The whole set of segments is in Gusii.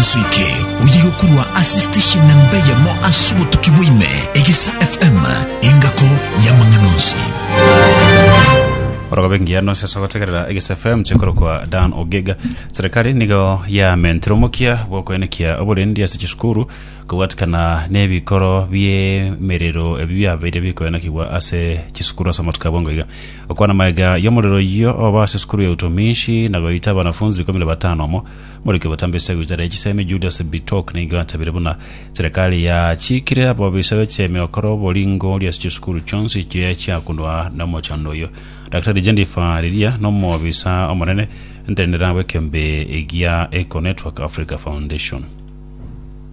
Inso eke oye gokorwa ase station na mbeyemo ase obotuki bwaime egesa FM engako yamang'ana onsi. orogobe engiya nonsi ase gotegerera egesa fm chikorokwa dan ogega serikali nigo yamentire omokia bw'okoenekia oborendi ase chisukuru kobwatikana n'ebikoro biemerero ebi biabeire bikoenekigwa ase chisukuru ase amatuko abongo iga okwana magega y'omorero oyio oba ase sukuru ya utumishi na goita abanafunzi ikomi na batano omo Moriki obotambe esagu y'echara ye chisemi Judas Bitok nigo achabire buna serikali yachiikire ababisa b'echemi gokora oboringoria ase chisukuru chionsi chiria chiakunwa nomochando oyio. Daktari Jennifer riria nomobisa omonene ntenderera bw'ekeombe egia Eco Network Africa Foundation.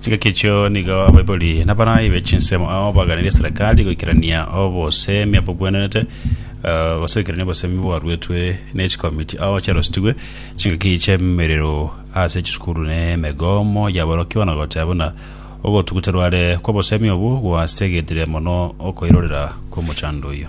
Chingaki echio nigo abaibori na abarai be chinsemo ao baganirie eserekari goikerania obosemi abogwenerete eh, gose goikerania obosemi bwaruetwe ne chikomiti ao chiarosetigwe chingaki chi'emerero ase chisukuru na emegomo y'aborokigwa na goteba buna ogotuguta rware kw'obosemi obwo gwasegetire mono okoirorera kw'omochando oyio.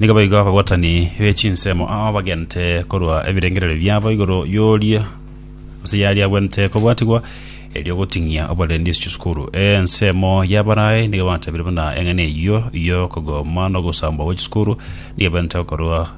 Nigo boigo abagwatani be chinsemo ao bagente korwa ebirengererio biabo igoro y'oria gose yaria agwenerete kobwatigwa, erio goting'ia oborendi ase chisukuru. Ensemo y'Abalayi nigo batabire buna eng'ana eyio y'okogoma na ogosambwa gwe chisukuru nigo ebenerete gokorwa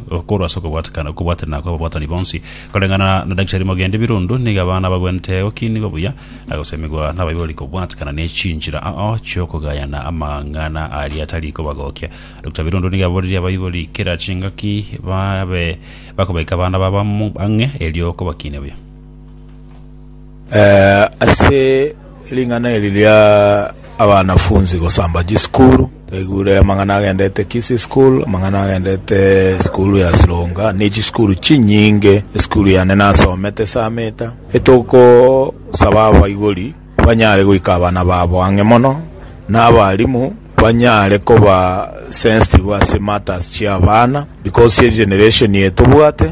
Okorwa ase okobwatekana okobwaterana kw'ababwatani bonsi, koreng'ana na Daktari Mogendi Birundu, nigo abana bagwenerete gokinigwa buya na gosemigwa n'abaibori kobwatekana n'echinchera ao chi'okogayana amang'ana aria atari kobagokia. Dr. Birundu nigo aboririe abaibori kera chingaki babe bakobaika abana babo amo ang'e erio kobakinia buya. Ase ring'ana eri ria abanafunzi gosamba chisukuru, twaigure amang'ana agendete Kisii School, amang'ana agendete esukuru ya Sironga, ne chisukuru chinyinge. Esukuru yane nasomete esamete, etogosaba abaibori banyare goika abana babo ang'e mono, na abarimu banyare koba sensitive ase matters chi'abana, because egeneration eye tobwate.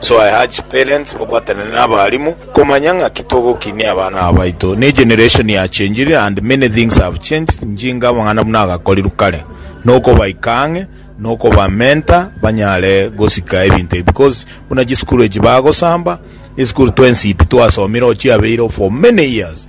Soe Haji parents babwatane na abalimu komanya ng'aki togokinia abana aba baito ne generation ya changed and many things have changed njinga amang'ana buna agakorirwe kare nokobaika ang'e nokoba mentor banyare gosika ebinto ebi because buna chisukuru echi bagosamba esukuru twensipi twasomire ochiabeire for many years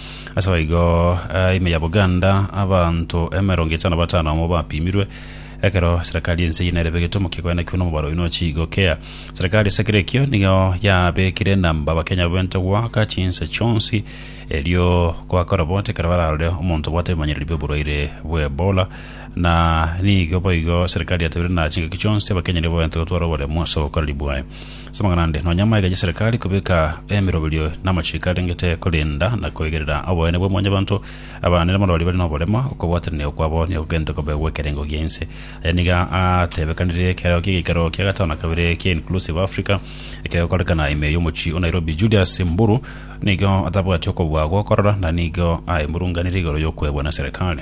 As'aboigo eh, ime ya Buganda abanto emerongo etano batano amo bapimirwe ekero serekari ense eyio nerebe egetomo kekoenda kio nomobaro oyio nochi gokea. Serekari esekera ekio nigo yabekire enamba Abakenya babente goaka chinse chionsi erio goaka oroboti ekero bararore omonto obwate ebimanyereri bi'oborwaire bwa Ebola na nigo boigo serekari yatebirie na chingaki chionsi Abakenya nigo babente gotwara oboremu as'obokoreri bwaye. Ase amang'ana ande, nonya maiga y'eserekari kobeka emeroberio na amachiko arengete korenda na koigerera oboene bwa mwanyabanto, abana na abarwari bare noborema, okobwatanania okwabo nigo kogende kobegwe ekerengo gia ense. Aya nigo atebekanire ekerero ki'egeikaro kia gatano na kabere kia Inclusive Africa ekegokorekana ime y'omochie o Nairobi. Julius Mburu nigo atabwati okobua gokorora na nigo aemurunganire igoro y'okwebwa na eserekari.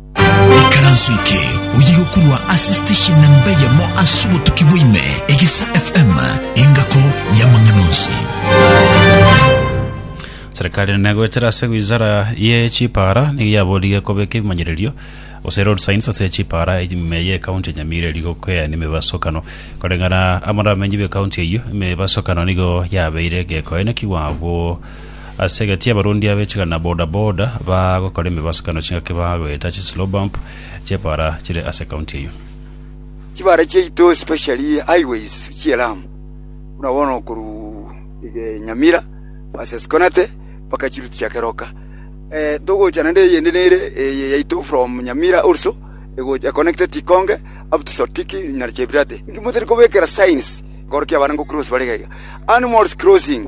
Ekaranso eke oye gokurwa ase station namba eyemo ase obotuki bwaime, Egesa FM, engako y'amang'ana onsi. Serikali negoetera ase wizara ye chipara nigo yaborire kobeka ebimanyererio gose road signs ase chipara ime ye county ya Nyamira eri gokwea nemebasokano koreng'ana amaramenyo be county eyio emebasokano nigo yabeire gekoenekigwa abwo Ase egati abarundi abechigana na boda boda bagokora emebasukano chingaki bagoeta chi slow bump chepara chire ase county eyio. Chibara chiaito especially highways chie Lamu buna bono koru iga Nyamira versus Konate mpaka chiruti chia Keroka eh, togocha naende eyende nere eye yaito from Nyamira also egocha connected Tikonge up to Sotiki na Chepirate. Inki motari kobekera signs korokio abana ngo cross bare iga iga animals crossing.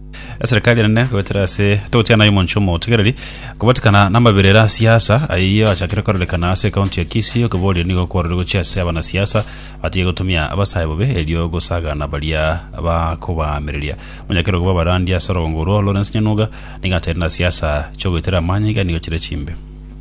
Eserikari enene goetera ase togotiana omonto omotigereri kobatikana namabirere a siasa ayio achakire kororekana ase ekaunti ya Kisii okoboria nigo kwarorire gochia ase abana siasa batiga gotumia abasae bobe erio gosagana baria bakobaamereria. Monyakero koba abarandi ase orogongo orwo Lawrence Nyanuga nigo ateire na siasa chogoetera amanyinga nigo chire chimbe.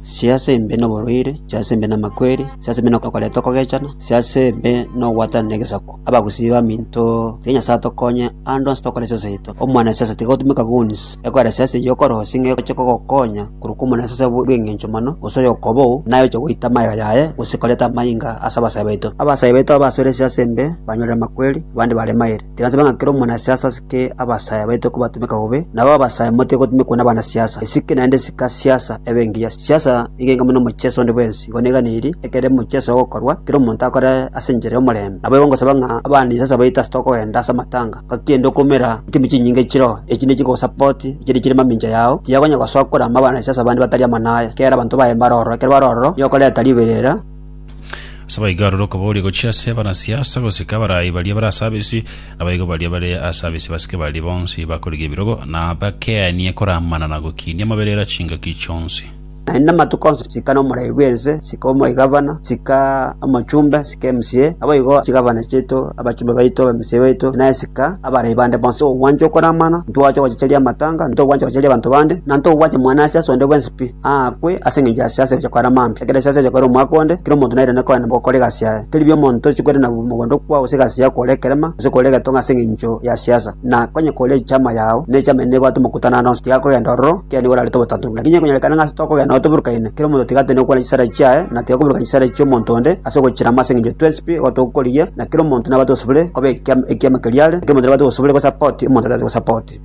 si'ase embe noborwaire, si'ase embe namakweri, si'ase embe nokoreta okogechana, si'ase embe nogwatana negesaku. Abagusii baminto, tiga Nyasae atokonye ande onsi tokore siasa yaito. Omwanasiasa tiga otumeka goons ekogera siasa eyio okorosia ng'a egochia kogokonya korwa kw'omonasiasa bw'engencho mono, gose oyokobou, naye oche goita amagega yaye gose koreta amainga ase abasae baito. Abasae baito abasore si'ase embe banyorire amakweri, abande bare mairi. Tigasaba ng'a kera omonasiasa asike abasaae baito kobatumeka bobe, nabo abasaae motige gotumekwa nabanasiasa. Esike naende sika siasa ebe engiya. Siasa nigo enke buna omochieso onde bwensi. Igo neganeirie, ekero omochieso ogokorwa, kera omonto akore ase enchera y'omorembe. Naboigo ngosaba ng'a abanisiasa baito ase tokogenda ase amatanga, ngaki ende okoumera ntimi chinyinga echiroho, echi nigo chikogosapoti, echiria chire mamincha yao, tiyakonya gosoa korama abanasiasa bande batari amo naye. Kera abanto baye mbare ororo, ekero bare ororo, nigo okoreta riberera, Ase abaigo aroro okobooria gochia ase abanasiasa gosika abarai baria bare ase abisi, nabaigo baria bare ase abisi basike baria bonsi bakorige ebirogo na bakeanie koramana na gokinia amaberero a chingaki chionsi. Naende amatuko onsi sika nomorai bw'ense, sika omoigavana, sika omochumbe, sika emca, naboigo chigavana chiaito, abachumbe baito, abemca baito, naye sika abarai bande bonsi. Ogwancha okoramana, ntogwancha ogochicheria amatanga, ntogwancha ogochicheria abanto bande, na ntogwancha mwanasiasa onde bwensi. pi, aakwe ase engencho ya siasa egocha koera mambia. Ekero siasa egocha koera omwaka onde, kera omonto nairane koenda gokora egasi yaye. Teri pi omonto tochi koirana mogondo okwo gose egasi yao kore ekerema gose kore egetonga ase engencho ya siasa. Na onye kore echama yao, ne echama eye nebwate omokutano ande onsi, tiga kogenda ororo, kera nigo orarete obotantu. Lakini onye konyarekana ng'a ase tokogenda nabo toburukaine, kera omonto tiga atende gokwana chisara chiaye, na tiga koburuka chisara chia omonto onde ase ogochirama ase engencho twensi pi igo togokorigia, na kera omonto nabwate obosubore koba ekiama ekiama keria are, na kera omonto nabwate obosubore gosapoti omonto otaete gosapoti.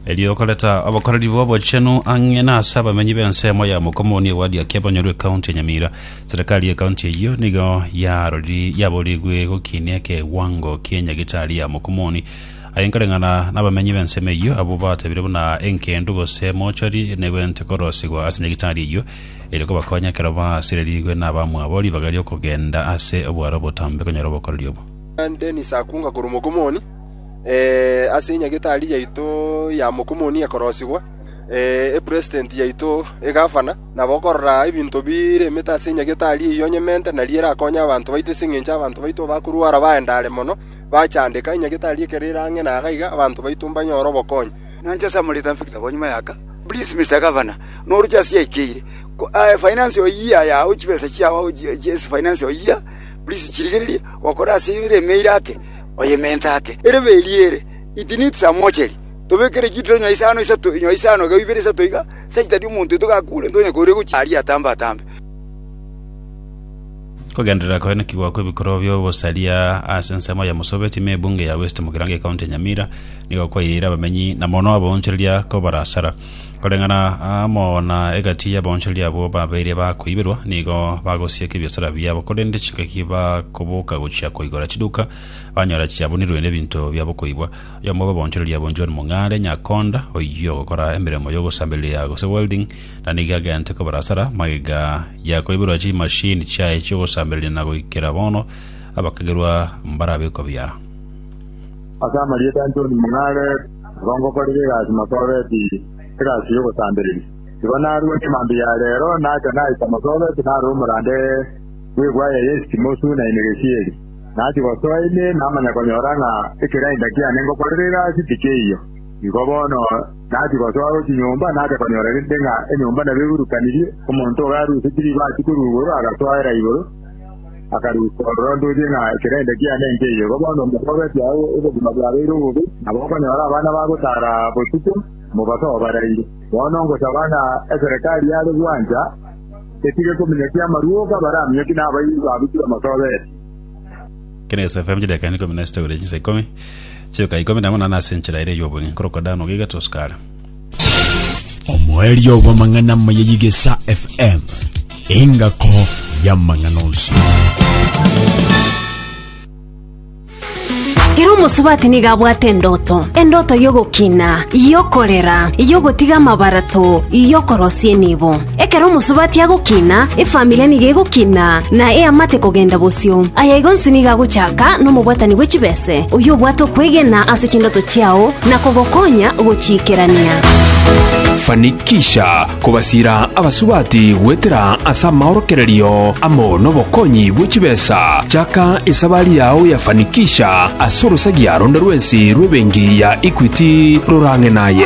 Erio okoreta obokoreri bw'obochenu ang'e na ase abamenyi b'ensemo ya Mokomoni ewadi ya Kiabonyoru ekaunti ya Nyamira. Serikali y'ekaunti eyio nigo yaroriri yaborigwe gokinia ekewango kie nyagitari ya Mokomoni aye nkoreng'ana n'abamenyi b'ensemo eyio abwo batebire buna enkendu gose mochwari negwente korosigwa ase nyagitari eyio ere kobakonya ekero basirerigwe n'abamwabo ribaga ri'okogenda ase obwaro obotambe konyora obokoreri obo. Dennis Akunga korwa Mokomoni. ase enyagetari yaito ya mokumuni ekorosigwa, epresident yaito, egavana, na bokorora ebinto biremete ase enyagetari eyio onyemente, nario erakonye abanto baito, ase engencho abanto baito bakorwara baendare mono, bachandeka, enyagetari ekero ere ang'e na iga iga, abanto baito mbanyore obokonyi. Nainche ase amarieta Victor konyuma y'aka, please Mister Governor, noroche ase yaikeire, finance of year yago chibesa chiago ase finance of year please chirigererie, gokora ase emeire ake. Oyementa ake, Erebe eria ere Itnit Samocheri, tobekere chitiro inyoa isano isato, inyoa isano igao ibere isato iga, ase chitari omonto oito gakure, ntonye koria gochia aria atambe-atambe. Kogenderera koyia naki gwakwa ebikorwa bia obosaria ase ensemo ya Musobe time ebunge ya West Mugirango ecounty ya Nyamira nigo kwairiire abamenyi na mono abaonchoreria ko barasara Koreng'ana amo na egati y'abaonchori abwo babeire bakoiberwa, nigo bagosieka ebiasara biabo, korende chingaki bakoboka gochia koigora chiduka, banyora chiabunirwe nebinto bia bokoibwa. Oyomo bw'abaonchoreri abwo John Mung'are, Nyakonda, oyio ogokora emeremo y'ogosambereria gose welding, na nigo agente kobara asara magega ya koiberwa chimashini chiaye chi'ogosambereria na goikera bono abakagerwa mbarabekwa biara. Ase amarieta anchoni mong'are kongokorera egasi mosobeti egasi y'ogosambereria. Igo narue chimambia ya reero nacha naita mosobeti naro omorande bw'egwaya ya Esitimosu na Enegesiyeri. Nachia gosoa ime namanya konyora ng'a ekerainda kiane ngokorera egasi tikeiyo. Igo bono nachia gosoa gochia nyomba nacha konyora rende ng'a enyomba nabo eburukanirie, omonto ogaruseti ribaati korwa igoro agasoera igoro. Akarika ororondwetie ng'a ekerende kiane nkeiyo. Igo bono mbogoretie agwo obogima bwabeire obobe, na bokonyora abana bagotaara botuko, mobaso obaraire. Bono ngosaba ng'a eserekari yare gwancha etige kominyokia amaruoka baraminyokie na abairi ba Buchiri omotobeete. Kera Yeso afeamchete akaenda ikomi na sita goria chinsa ikomi, chioka ikomi na monana ase enchera ere ey'obong'e, nkorokwa Dano, gaiga Tosukara. omoerio bw'amang'ana amaya y'Igesa FM, engako y'amang'ana onsi. Ere omosubati nigo abwate endoto, endoto y'ogokina, y'okorera, y'ogotiga amabarato, y'okorosia enibo. Ekero omosubati agokina, efamiri nigo egokina, na eamate kogenda bosio. Aya igo onsi nigo agochaka nomobwatani bwe chibese, oyio obwate okwegena ase chindoto chiao na kogokonya gochiikerania. Fanikisha kobasiira abasubati goetera ase amaorokererio amo nobokonyi bwe chibesa. Chaka esabari yao ya Fanikisha ase orosagia ronde rwensi rw'ebenki ya Equity rorang'e naye.